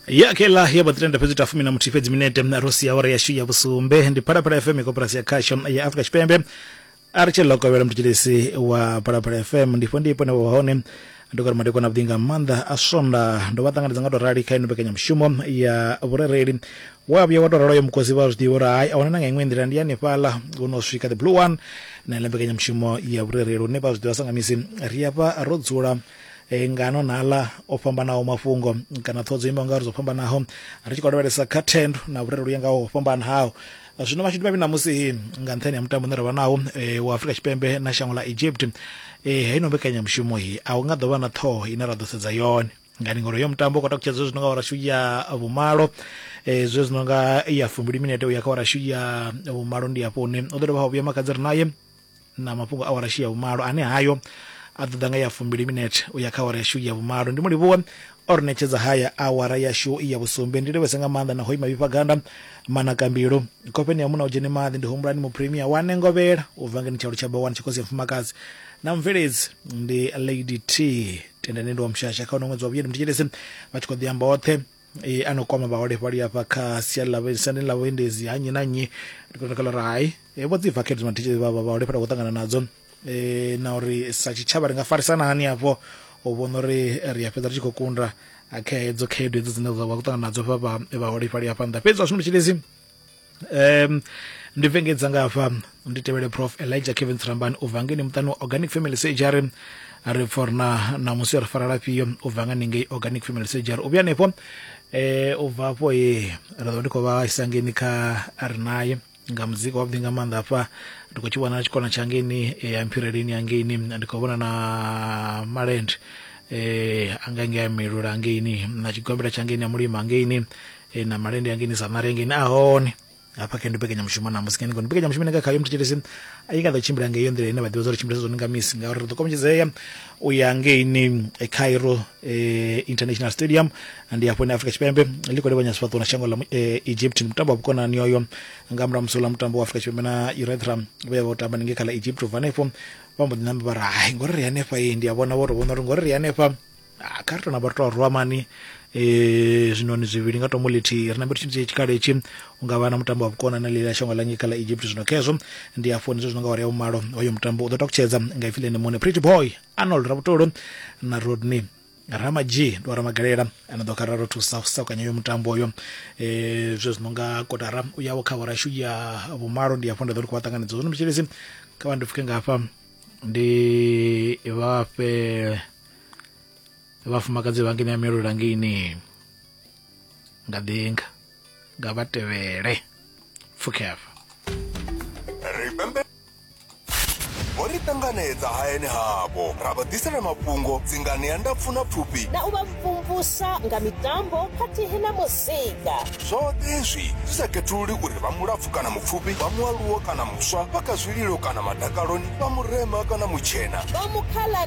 ya kela ya batiri nda fhedzi ta fumi na muthihi fhedzi minete ro sia awara yashu ya vhusumbe ndi phalaphala fm ya koporasi ya khasho ya afrika tshipembe a ri tshi lokovhela mutshitshilisi wa phalaphala fm ndifho ndi ipone wa hone ndokori madekwana avhuḓi nga maanḓa a swonda ndo vha ṱanganedza nga tou rali kha ino mbekanyamushumo ya vhurereli wa vhuya wa tou raloyo mukosi vha zwiḓivha uri hai a huna na nga iṅwe nḓila ndi hanefhaḽa hu no swika the blue one na ile mbekanyamushumo ya vhurereli hune vha zwiḓivha sa nga misi ri a vha ro dzula e, ngano na aḽa o fhambanaho mafhungo kana ṱhodzo imaho ngauri dzo fhambanaho ri tshi khou lavhelesa kha thendo na vhurereli ya ngaho fhambanaho zwino mashudu mavhi ṋamusi nga nṱhani ha mutambo une ra vha nawo e, wa afrika tshipembe na shango ḽa egypt e, heino mbekanyamushumo i a hu nga ḓo vha na ṱhoho ine ra ḓo sedza yone ngani ngori yo mutambo u khou takutshedza zwe zwi no nga warashu ya vhumalo um zwe zwi no nga ya fumbili minete u ya kha warashu ya vhumalo ndi hafho hune u ḓo dovha ha vhuya makadzi ri naye na mafhungo a warashi ya vhumalo ane hayo a ḓo ḓa nga ya fumbili minete u ya kha awara yashu ya vhumalo ndi mu livhuwe o ri ṋetshedza haya awara yashu ya vhusumbe ndi livhese nga maanḓa na hoi mavhifha ganda manakambilu khofheni ya muna u dzhene maḓi ndi humbulani mupremia wa nengovhela u bva ngeni tsha lutshaba wani tshikosi ya mfumakadzi na mubveledzi ndi lady t tendani ndi wa mushasha kha uno ṅwedzi wa vhuyeni mthetshelesi vha tshi khou ḓi amba oṱhe e ano kwama vhaholefhali hafha kha sia ḽa siani ḽa vhuendedzi ha nnyi na nnyi ri khou takala uri hai e vho dzi vakhedzo na thitshedzi vha vhaholefhali khou ṱangana nadzo e na uri sa tshitshavha ri nga farisana hani hafho u vhona uri ri a fhedza ri tshi khou kunda kha hedzo khaedu hedzo dzine dza vha khou ṱangana nadzo vha vhaholefhali hafha nnḓa fhedzi zwa zwino tshilidzi um ndi vengedza nga hafha ndi tevhele prof elijah kevin tsirambani u bva ngeni muṱani wa organic family surgery ri pfa uri na namusi ri fara lafhio u bva nga ningei organic family surgery u vhuya hanefho um eh, u bva afho ye ri ḓo ndi khou vha isa ngeni kha ri naye nga muzika wavhuḓi nga maanḓa hafha ndi khou tshi vhona na tshikona tsha ngeni eh, ya mphireleni ya ngeini ndi khou vhona na malende um eh, anga ngei milula ngeini na tshigombela tsha ngeini ya mulima ngeini e, na malende a ngeni sa marengeni a hone hafha khe ndi mbekanyamushumo na musi khe ndi mbekanyamushumo nga khayo muthetshelesi i nga ḓo tshimbila nga iyo nḓila ine vha ḓivha zwa ri tshimbilisa zwone nga misi ngauri ri ḓo kombetshedzea u ya ngeini e, cairo e, international stadium ndi hafho ine afrika tshipembe ḽi khou livhanya sifhaṱuwo na shango ḽa mu- e, egypt ndi mutambo wa vhukonani oyo nga murahu musi uḽa mutambo wa afrika tshipembe na urethra vhe vha u tamba ndi nge kha ḽa egypt u bva hanefho vha mbo ḓi namba vha ri hai ngori ri hanefha iyi ndi a vhona vho tou vhona uri ngori ri hanefha ah, kha ri tona vha ri to rwa mani eh zwinoni zwivhili nga tombo ḽithihi ri nambe ri tshi dzhie tshikhala itshi u nga vha na mutambo wa vhukona na ḽila shango ḽa ngei kha ḽa egypt zwino khezwo ndi afho ndi zwino nga wari ya vhumalo hoyo mutambo u ḓo takutshedza nga ipfi ḽene muṋe pretty boy arnold rabutolo na rodney ramadzhi ndi wa ramagalela ana ḓo khararo thusa u sakanya uyo mutambo uyo eh zwe zwino nga kotara u yawo kha horashu ya vhumalo ndi afho nda ḓo ri khou vha ṱanganedza zwino mutshilisi kha vha ndi pfuke nga hafha ndi vhafhe vhafumakadzi vha ngene ya miolula ngini nga ḓinga nga vha tevhele pfuke hafha ripembe vho ri ṱanganedza hayani havho ra vha ḓisela mafhungo dzingani ya ndapfu na pfufhi na u vha mvumvusa nga mitambo khathihi na muzika zwoṱhe zwi zwi sa khethululi uri vha mulapfu kana mupfufhi vha mualuwo kana muswa vha kha zwililo kana madakaloni vha murema kana mutshena vha mukhala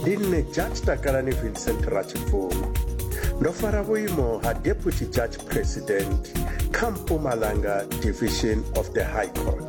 ndi nṋe judge takalani vincent rachibvuma ndo fara vhuimo ha deputy judge president kha mpumalanga division of the high court